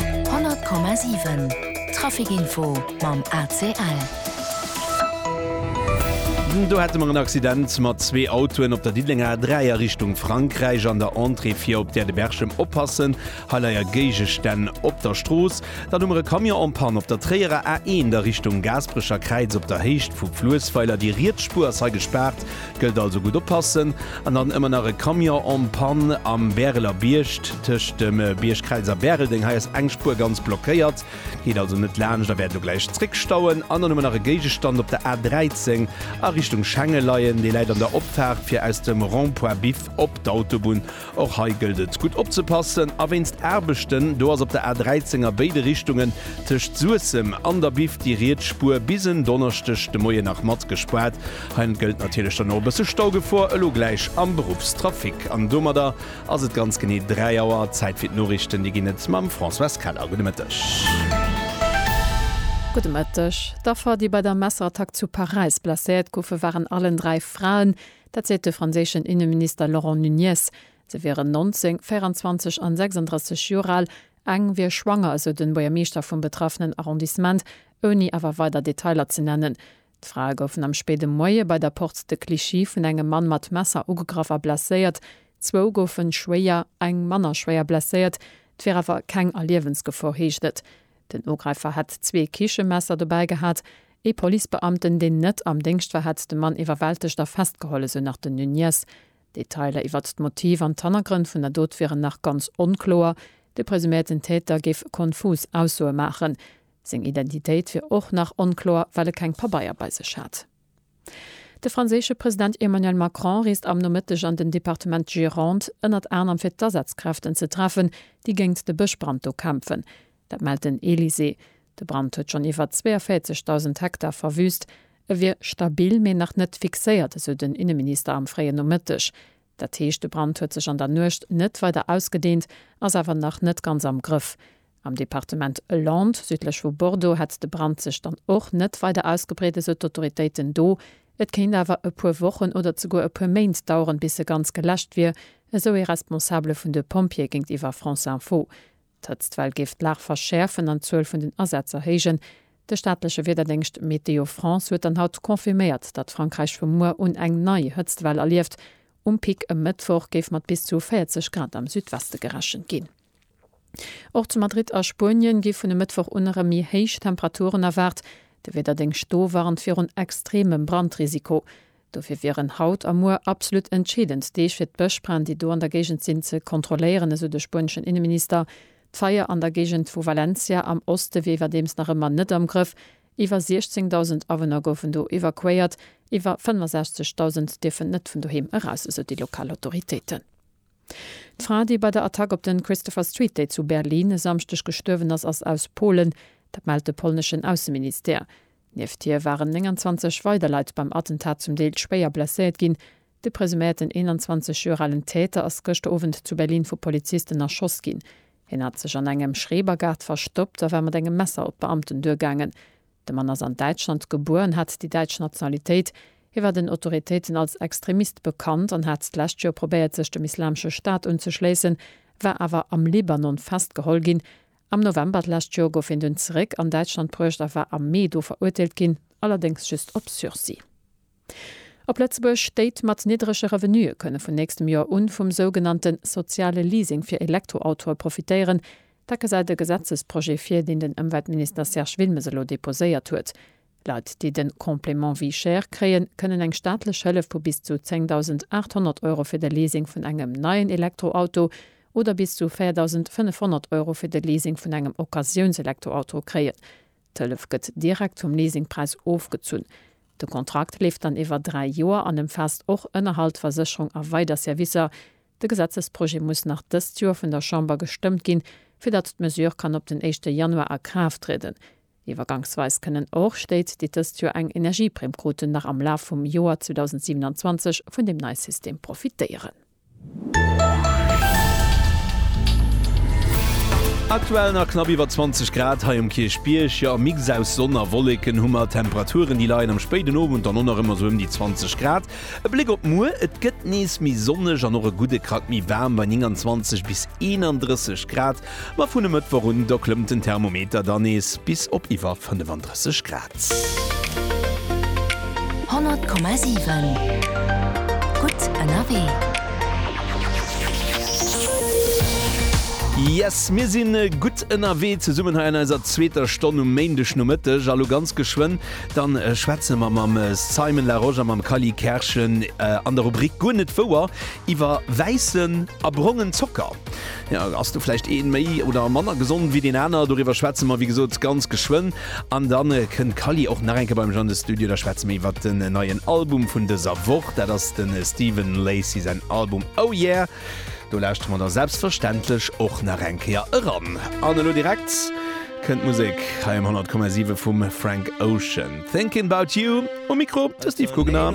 100,7 Trafic Info mam ACL. Do hate mer en Accident mat zwee Autoen op der Diddelenger A3 a Richtung Frankräich. An der Entrée fir op d'Gare de Berchem oppassen, hei leie Géigestänn op der Strooss. Dann hu mer e Camion en panne op der Tréierer A1 a Richtung Gaasperecher Kräiz op der Héicht vu Fluessweiler. Déi riets Spuer ass hei gespaart. Gëllt also gutt oppassen. An dann ëmmer nach e Camion en panne am Bäreler Bierg, tëscht dem Bierg Kräls a Bäreldeng. Hei ass eng Spuer ganz blockéiert, geet also net laanscht a wäert elo gläich zréckstauen. An dann hu mer nach e Géigestand op der A 13 a Richtung Schengen leien. Dee läit an der Opfaart, fir aus dem Rond-point Biff op d'Autobunn Och hei gëllt et gutt opzepassen a wéinst Aarbechten do ass op der A 13 a béide Richtungen tëscht Suessem an der Biff déi riets Spuer bis en Donneschdeg de Moien nach mat gespaart. Hei gëllt natierlech dann och e bësse Staugefor elo gläich am Beruffstrafic. An domadder ass et ganz genee 3 Auer. Zäit fir d'Noriichten, déi ginn et mam Françoise Keller. Gudde Mëtteg. Gudde Mëtteg. D'Affer, déi bei der Messerattack zu Paräis blesséiert goufe waren allen dräi Fraen. Dat seet de franséischen Inneminister Laurent Nunez. Se wieren 19, 24 an 36 Joer al. Eng wier schwanger, esou de Buergermeeschter vum betraffenen Arrondissement, ouni awer weider Detailer ze nennen. D'Frae goufen am spéide Moie bei der Porte de Clichy vun engem Mann mat Messer ugegraff a blesséiert. Zwou goufe schwéier, eng manner schwéier blesséiert. Et wier awer keng a Liewensgefor, heescht et. Den Ugräifer hätt zwee Kichemesser dobäi gehat. Ee Policebeamten, deen net am Déngscht war, hätt de Mann iwwerwältegt a festgeholl, esou nach den Nuñez. D'Detailer iwwert d'Motiv an d'Hannergrënn vun der Dot wieren nach ganz onkloer. De presuméierten Täter géif konfus Aussoe maachen. Seng Identitéit wier och nach onkloer, well e keng Pabeier bei sech hat. De franséische President Emmanuel Macron reest am Nomëtteg an den Departement Gironde, ënnert anerem fir d'Asazkräften ze treffen, déi géint de Bëschbrand do kämpfen. Dat mellt den Elysée. De Brand huet schonn iwwer 42.000 Hektar verwüüst. E wier stabil, mee nach net fixéiert, esou den Inneminister am fréien Nomëtteg. Dat heescht, de Brand huet sech an der Nuecht net weider ausgedehnt, ass awer nach net ganz am Grëff. Am Departement Landes, südlech vu Bordeaux, hätt de Brand sech dann och net weider ausgebreet, esou d'Autoritéiten do. Et kéint awer e puer Wochen oder zeguer e puer Méint daueren, bis e ganz geläscht wier, esou ee Responsabele vun de Pompjeeë géintiwwer France Info. D'Hëtztwell géif d'Lag verschäerfen an d'Zuel vun den Asätz erhéijen. De staatleche Wiederdéngscht Météo France huet dann haut confirméiert, datt Frankräich vu muer un eng nei Hëtztwell erlieft. Um Pic e Mëttwoch géif mat bis zu 40 Grad am Südweste gerechent ginn. Och zu Madrid a Spuenien gi vun e Mëttwoch un erëm méi héich Temperaturen erwaart. De Wiederdéngscht do warnt virun extreemem Brandrisiko. Dofir wieren haut a muer absolut entscheedend Deeg fir d'Bëschbränn, déi do an der Géigend sinn, ze kontrolléieren, esou de spueneschen Inneminister. D'Feier an der Géigend vu Valencia am Oste wier iwwerdeems nach ëmmer net am Grëff. Iwwer 16.000 Awunner goufen do evakuéiert, iwwer 65.000 dierfen net vun doheem eraus, esou déi lokal Autoritéiten. D'Fra, déi bei der Attack op den Christopher Street Day zu Berlin e Samschdeg gestuerwen ass, ass aus Polen. Dat mellt de polneschen Ausseministère. Nieft hir waren 29 weider Leit beim Attentat zum Deel schwéier blesséiert ginn. De presuméierten 21 Joer alen Täter ass gëschter Owend zu Berlin vu Polizisten erschoss ginn. Hien hat sech an engem Schrebergaart verstoppt a war mat engem Messer op d'Beamten duergaangen. De Mann ass an Däitschland gebuer an hat déi däitsch Nationalitéit. Hie war den Autoritéiten als Extremist bekannt an hat d'lescht Joer probéiert sech dem Islamesche Staat unzeschléissen, war awer am Libanon festgeholl ginn Am November d'lescht Joer gouf hien dunn zeréck an Däitschland bruecht a war am Mee do verurteelt ginn, allerdéngs just op Sursis. Op Lëtzebuerg, Stéit mat niddrege Revenuë kënne vun nächstem Joer un vum sougenannte soziale Leasing fir Elektroautoe profitéieren. Dat gesäit e Gesetzesprojet vir, deen den Ëmweltminister Serge Wilmes elo deposéiert huet. Leit, déi de Complément vie chère kréien, kënnen eng staatlech Hëllef vu bis zu 10.800 Euro fir de Leasing vun engem neien Elektroauto oder bis zu 4.500 Euro fir de Leasing vun engem Occasiounselektroauto kréien. D'Hëllef gëtt direkt vum Leasingpräis ofgezunn. De Kontrakt leeft dann iwwer dräi Joer an ëmfaasst och Ënnerhalt, Versécherung a weider Servicer. De Gesetzesprojet muss nach dëst Joer vun der Chamber gestëmmt ginn, fir datt d'Mesure kann op den éischte Januar a Kraaft trieden. Iwwergangsweis kënnen och Stéit, déi dëst Joer eng Energieprimm kruten, nach am Laf vum Joer 2027 vun deem neie System profitéieren. Aktuell nach knapp iwwer 20 Grad hei um Kierchbierg, jo e Mix aus Sonn a Wolleken hu mer. Temperaturen déi leien am spéiden Owend dann och nach ëmmer sou ëm déi 20 Grad. E Bléck op muer, et gëtt nees méi sonneg an och e gudde Krack méi waarm bei 29 bis 31 Grad. Ma vun e Mëttwoch un, do klëmmt den Thermometer dann nees bis op iwwer 35 Grad. 100,7 gutt ënnerwee. Yes, mir si gutt ënnerwee zesummen hei an eiser zweeter Stonn um Méindegnomëtteg. A lo ganz geschwënn, da schwätze mer mam Simon Larosche a mam Kally Kerschen an der Rubrik Guer net wouer iwwer wäissen a brongen Zocker. Jo, ass do vläicht een méi oder manner gesond ewéi deen aner? Doriwwer schwätze mer wéi gesot ganz geschwënn an dann kënnt d'Kali och nach eng Kéier bei mech an de Studio. Da schwätze mir iwwert den neien Album vun dëser Woch. Dat ass den Stephen Lacy säin Album Oh Yeah. Do lauschtere mer da selbstverständlech och nach eng Kéier eran. An elo direkt kënnt d'Musek hei um 100,7 vum Frank Ocean. Thinking About You um Mikro de Steve Kugner.